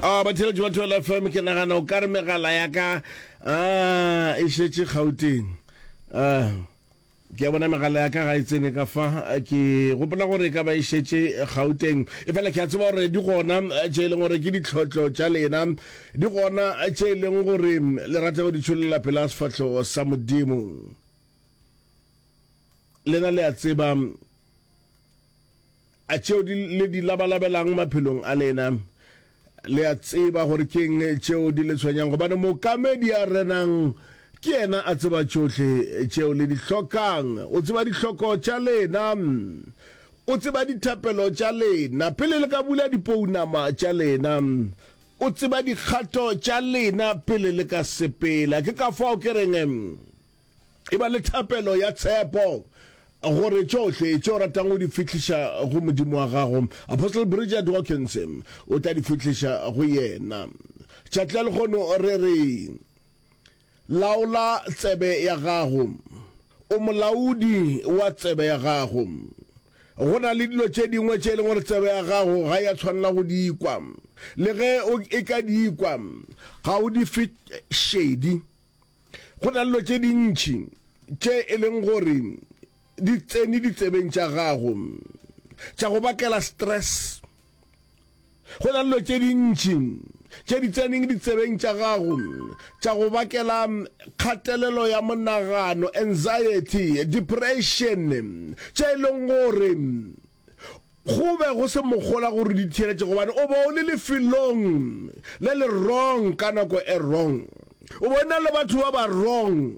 a ah, batheletši ba twela fm ke nagana o ka re megala ya ka a ah, e šetše gauteng a ah, ke a bona megala ya ka ga e tsene ka fa ke gopola gore e ka ba e šetše gauteng e fela ke a tseba gore di gona tše e leng gore ke ditlhotlho tša lena di gona tše e leng gore le rata go di tšholela pela sefatlho sa modimo lena le a tseba A tšeo di le di labalabelang maphelong a lena le a tseba gore ke eng tšeo di le tshwenyang? Gobane Mookamedi a renang ke yena a tseba tšohle tšeo le di hlokang. O tseba dihloko tša lena. O tseba dithapelo tša lena pele le ka bula dipounama tša lena. O tseba dikgato tša lena pele le ka sepela. Ke ka fao ke reng E ba le thapelo ya tshepo gore tšohle tše o ratang go di fihliša go Modimo wa gago, Apostle Bridget Watkins, o tla di fihliša go yena. Tšatla lehono re re, Laola tsebe ya gago. O molaodi wa tsebe ya gago. Go na le dilo tše dingwe tše e leng gore tsebe ya gago ga ya tshwanela go di ikwa. Le ge e ka di ikwa, ga o di fe šedi. Go na le dilo tše dintši tše e leng gore di tsene ditsebeng tša gago tša go bakela stress go na le dilo tše dintši tše di tseneng ditsebeng tša gago tša go bakela kgatelelo ya monagano anxiety depression tše e leng gore go be go se mogola gore di theeletše gobane o be o le lefelong le le wrong ka nako e wrong o be o na le batho ba ba wrong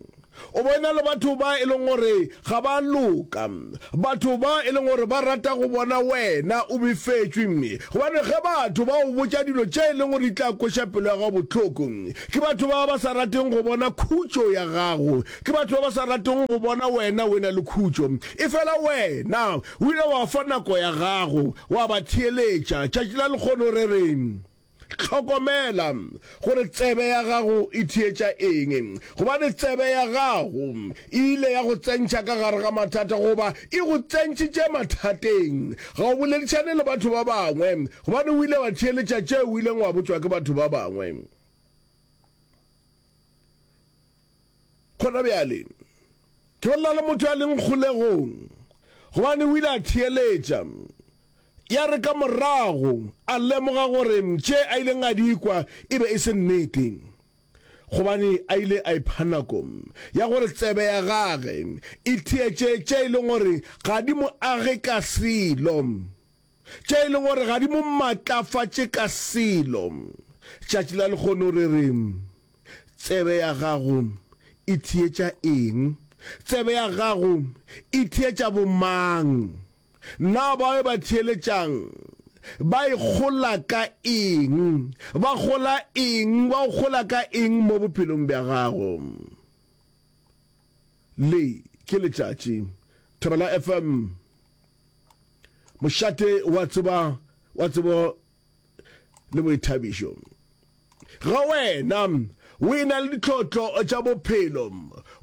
o be o na le batho ba e leng gore ga ba loka batho ba e leng gore ba rata go bona wena o befetswe mme gobane ge batho ba o botša dilo tše e leng gore di tla kweša pelo ya gago bohloko ke batho ba ba sa rateng go bona khutšo ya gago Ke batho ba ba sa ratego go bona wena o e-na le khutšo. Efela wena o ile wa fa nako ya gago, wa ba theeletša. Tšatši la lekgono re re, Hlokomela gore tsebe ya gago e theetša eng, gobane tsebe ya gago e ile ya go tsentšha ka gare ga mathata, goba e go tsentšitše mathateng. Ga o boledišane le batho ba bangwe, gobane o ile wa theeletša tšeo o ileng wa botšwa ke batho ba bangwe. Gona bjale, ke be nna le motho ya leng kgolegong, gobane o ile a theeletša. Ya re ka morago a lemoga gore tše a ileng a di kwa e be e se nnete, gobane a ile a ipha nako ya gore tsebe ya gage e theetše tše e lego gore ga di mo age ka selo. tša e le gore ga di mo matlafatše ka selo. Tšatši la lekgono re re, Tsebe ya gago e theetša eng? Tsebe ya gago e theetša bomang? Na bao ba theeletšang ba e kgola ka eng? Ba kgola eng? Ba o kgola ka eng mo bophelong bja gago? Le ke letšatši. Thobela FM. Mošate wa tseba wa tsebo le boithabišo. Ga wena o e na le ditlhotlo tša bophelo,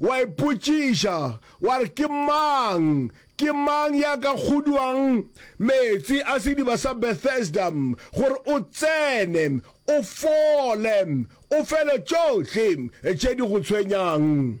wa ipotšiša wa re ke mang ke mang ya ka kguduang meetse a sediba sa Bethesda gore o tsene o fole o fele tšohle tše di go tshwenyang.